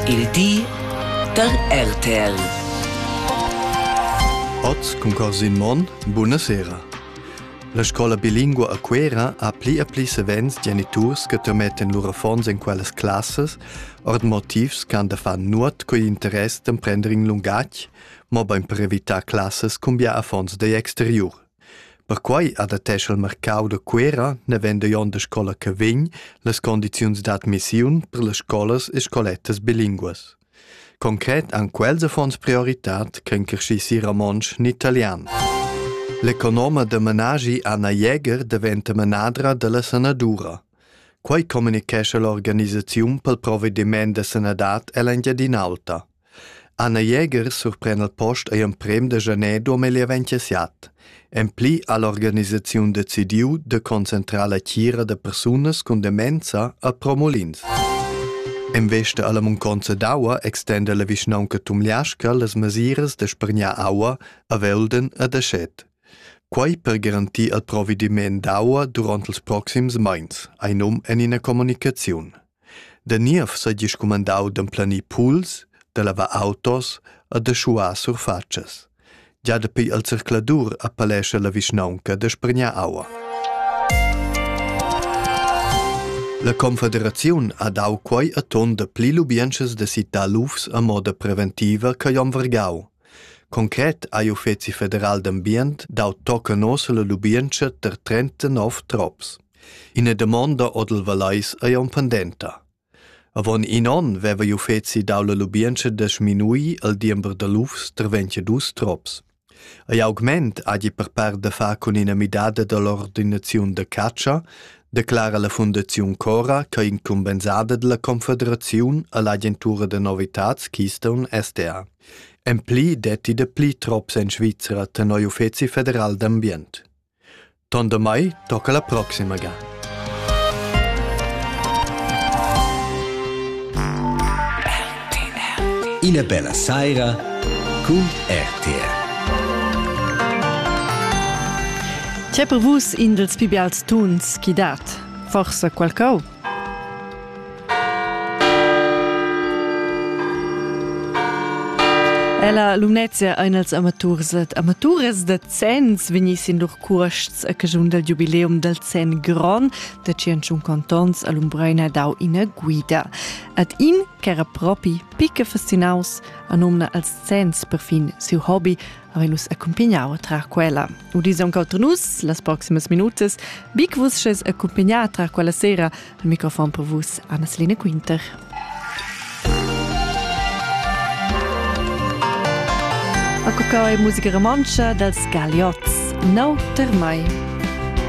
Il di da RTL. Oz cun Corsin Monn, buna sera. La scola bilingua a Cuera ha pli e pli savens geniturs che termetten lur affons en quellas classas, ord motivs ch'han da far nuot coi interess d'emprender in lungatg, mobein per evitar classas cumbia affons degl exteriur. Perquai adattescha il marcau da Cuera, navend igl onn da scola che vegn, las condiziuns d'admissiun per las scolas e scolettas bilinguas. Concret han quels affons prioritad ch'en crescissi romontsch ni italian. L'economa da menagi Anna Jäger daventa manadra dalla sanadura. Quai communicescha l'organisaziun pel provvediment da sanadad ell'Engiadin'Alta. Anna Jäger surpren al post ei emprem da janer duamilli e vintiset. En pli ha l'organisaziun decidiu de concentrar la tgira da persunas cun demenza a Promolins. En vesta alla munconza d'aua extenda la vischnaunca Tumliasca las mesiras da spregnar aua a Velden e da Schet. Quei per garantir al provediment d'aua duront els proxims meins, ein um en ina communicaziun. Da niev seigi scumandau d'emplanir puls, da lavar autos e da schuar surfatschas. Gia dapi il zercladur appellescha la vischnaunca da spargnar aua. La Confederaziun ha dau quei a ton da pli lubientschas da citar lufs a moda preventiva che Jon Vergau. Concret ha l'Uffizi federal d'ambient dau tocca nossa la lubientscha ter 39 trops. Ina damonda odel Valais ei aunc pendenta. Avon in onn veva il uffeci dau la lubientscha da sminuir il diember da lufs tra 22 trops. Ei augment hagi per part da far cun ina midada dall'ordinaziun da catscha, declara la Fundaziun Cora che incumbensada dalla Confederaziun all'agentura da novitads Keystone SDA. En pli detti da pli trops en Svizra tenor uffeci federal d'ambient. Ton damai tocca la proxima ga. Ina bella saira cun RTR. C'è per vus in dels pibi als tuns chi dat? Forsa qualcau? Ella Lumnezia ein els amaturs ed amaturas da zenns vegni sin lur cuosts a casun dal giubileum dal zenn gron da 101 cantons a Lumbreina dau ina guida. Ad in ch'era propi picca fascinaus, anumna als zenns per fin siu hobby, havein nus accumpignau trar quella. Udis aunc auter nus las proximas minutas. Bic vus sches accumpignar trar quella sera al microfon per vus Anna-Selina Quinter. A cuccau è musica romantscha dals Galiots, no ter mai.